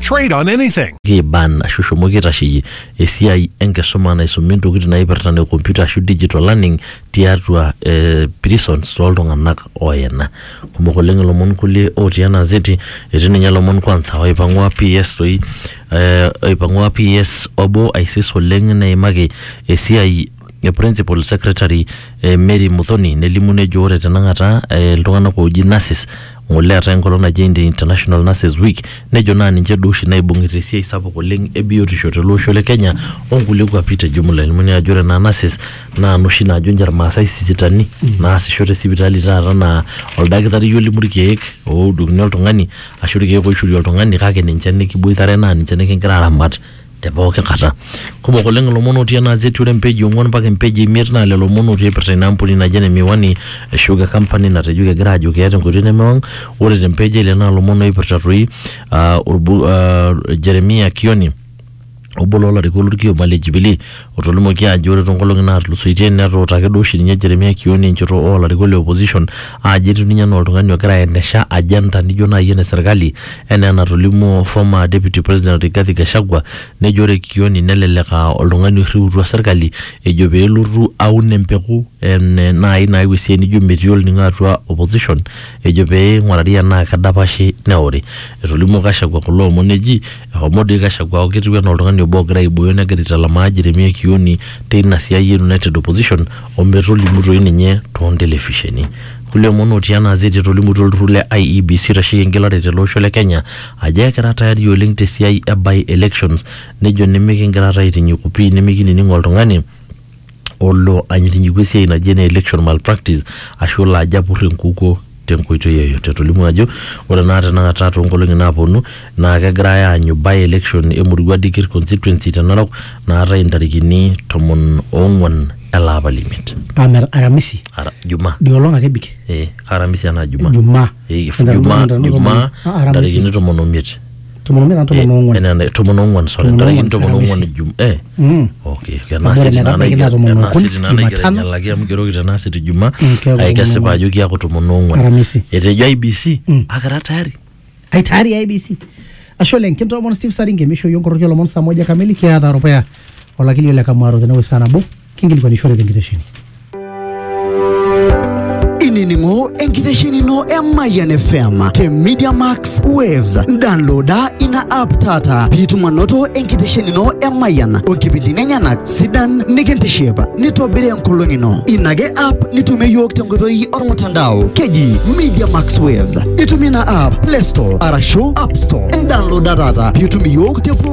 Trade on anything. kiban ashu shomoki aitasheyie esiai enkisuma naisumi ntokitin naipirta ne computer ashu digital learning tiatua eh, prisons toltung'anak oyena kumok oleng ilomon kulie otii ena zeti etii ninye ilomon kwanza oipang'ua PS toi eh, oipang'ua PS obo aisis oleng neimaki esiai e principal secretary eh, Mary Muthoni nelimu nejo ore tenakata eh, iltung'anak ooji nurses ng'ole eetae enkolong naji Indi- International Nurses Week nejo naa ninche duo oshi naibung'ita esiai sapuk oleng e biotisho tele osho le Kenya onkulie kuapi te jumla elimu naa ajo ore naa nurses naa noshi naajo ninche irmaasai sisitani naasisho te sipitali taata naa oldakitari olimu irkeek oudokini oltung'ani ashu irkeek oishori oltung'ani kake ninche nikiboitare naa ninche nikingira aramat te pooki kata. Kumok oleng ilomon otii ena gazeti ore empeji ong'uan mpaka empeji imiet naa lelo omon otii eipirta ina ampuni naji ene Miwani ashu ke company natejo kegira aajo keeta enkoitoi nemewang. Ore te mpeji e ile naa ilomon oipirta toi aa olbu aa Jeremiah Kioni obo loo larikok lolkioma le Jubilee Otolimuoki ajo ore toonkolongi naatulusoitie netuutaki duo oshi ninye Jeremia Kioni enchoto oo larikok le opposition aajo etiu ninye anaa oltungani ogira aendesha agenda nijo naaji ene serkali enaa enatolimuo former Deputy President Rigathi Gachagua nejo ore Kioni nelelek aa oltungani oirriutua serkali ejo pee elotu aun empeku ene naaji nayau esiai nijo metii olningo atua opposition ejo pee eingurari enaa kedapashi neori. Etolimuo Gachagua kulo omon eji Ehomo doi Gachagua aaku ketiu anaa oltung'ani obo ogira aibooyo negira aitalamaa Jeremia Kioni teina siai e United Opposition o metolimu doi ninye too ntelefisheni. Kulie omon otii ena azeti etolimutuo olturrur le IEBC oitasheki engelare tele osho le Kenya ajo ekira tayari oleng te siai e by-elections nejo nimikingira taa aitinyiku pii nimikinining oltung'ani olo anyitinyiku esiai naji ene election malpractice ashu olo ajo apur enkukuo tenkoitoi yoyote. Etolimuo ajo ore naa tenakata toonkolong'i naaponu naa kegirai aanyu by election e Murua Dikir constituency te Narok naatae intarikini tomon oong'wan ele apa le imiet. Amer Aramisi Ara, Jumaa. dio olong ake ebik Eh, aramisi anaa Jumaa. Jumaa. Eh, Entarikini Jumaa, tomon o Jumaa, tano, Aramisi. ntarikini tomon omiet. tomon omiet anaa tomon oong'uan Enaa ene- tomon ong'uan sorry Tomon ntarikini ong'uan, tomon Aramisi. ong'uan jum eh Mm. okay Amu kenaa ore siti naa metabaiki naa naigero tomon enaa okuni, siti naa naigero Jumatano. ainyalaki amu igeroki tenaa siti juma Mm, keeku kake kesipa tomon ajo kiaku tomon ong'uan Aramisi. etejo IBC Mm. akira tayari ai tayari IBC ashe oleng kintoomon Steve Saringe mishoyio nkoroki olomon saa moja kamili kiata rupea olakili ole Kamwaro tenewueji saa nabo Kinkilikuanishore tenkitesheni. inining'o enkitesheni ino e Mayian FM te Media Max Waves. Downloada ina app taata piitum anoto enkitesheni ino e Mayian onkipindini enyenak sidan nikintiship nitobiri enkolong ino. Ina ake app nitumie iyiook tenkoitoi ormutandao keji Media Max Waves. Itumie ina app Play Store arashu App Store. Downloada taata piitum iyiook te pooki